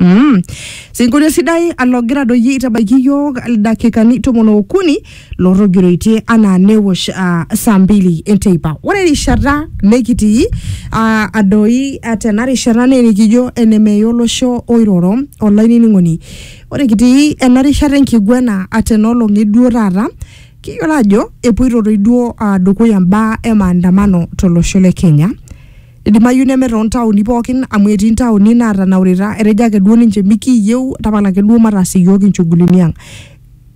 Mm. Sinkolio sidai alogira doi aitabaiki iyiook ildakikani tomon ookuni lootogiroitie anaa newosh uh, saa mbili enteipa. Ore erishata nikitii uh, adoi uh, tena rishata naa enikijo enemeya olosho oiroro olainining'oni. Ore kitii ena rishata enkiguena uh, tena olong e duo taata kiyiolo ajo epoito doi duo uh, dukuya mbaa e maandamano tolosho le Kenya. Idimayu neme too ntaoni pookin amu etii ntaoni naatanaurita etejo ake duo ninche mikiiyieu tapala ake duo mataas iyiook inchugulini ang.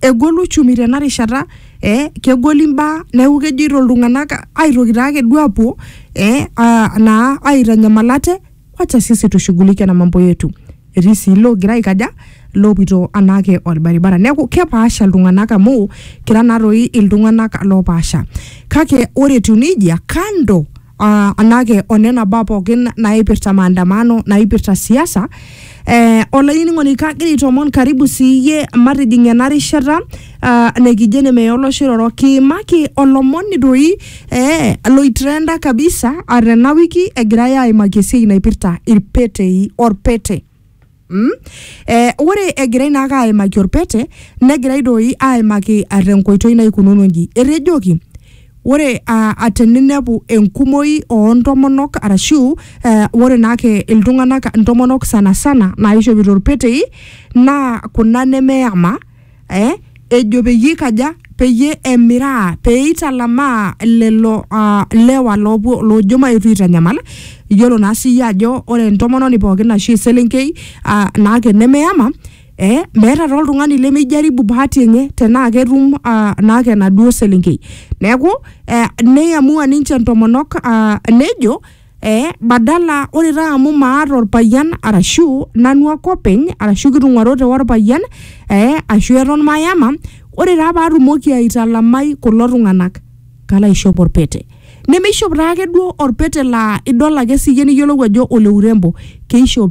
Egol uchumi tena rishata eh kegol imbaa neeku kejoito iltung'anak aitoki taa ake duo apuo eh aa naa aitanyamal ate wacha sisi tushughulike na mambo yetu. Etii sii iloogira aikaja iloopito anaake orbaribara. Neeku kepaasha iltung'anak amu kira naa toi iltung'anak loopaasha. Kake ore etiu neijia kando uh, anake onena baa pookin naipirta maandamano naipirta siasa eh, olainining'oni kagira aitoomon karibu siiyie matijing ena rishata uh, nikijo ene meya olosho iroro kiimaki olomoni doi eh, loitrenda kabisa uh, tena wiki egirai aimaki esiai naipirta irpetei orpete Mm? Eh, ore egirai naake aimaki olpete negirai doi aimaki ah, tenkoitoi naikununo nji etejoki ore ah, ah, teninepu enkumoi oontomonok arashu eh, ore naake iltung'anak intomonok sana sana naaishopito ilpetei naa kuna nemeyama eh, ejo peyie ikaja peyie emiraa pee italamaa lelo uh, lewa loopuo loojo maetu aitanyamal iyiolo naa siyie ajo ore entomononi pookin ashu eselenkei uh, naake nemeyama eh, meeta taa oltung'ani lemijaribu bahati enye tenaa ketum uh, naake enaduo selenkei neeku eh, neiamua ninche ntomonok uh, nejo Eh, badala ore taa amu maata orpayian arashu nanu ake openy arashu kitung'uarote orpayian eh, ashu eton mayama ore taa paatumoki aitalamai kulo tung'anak kalo aishop orpete nemeishop taake duo orpete laa idol ake siyie niyiolou ajo ole urembo keishop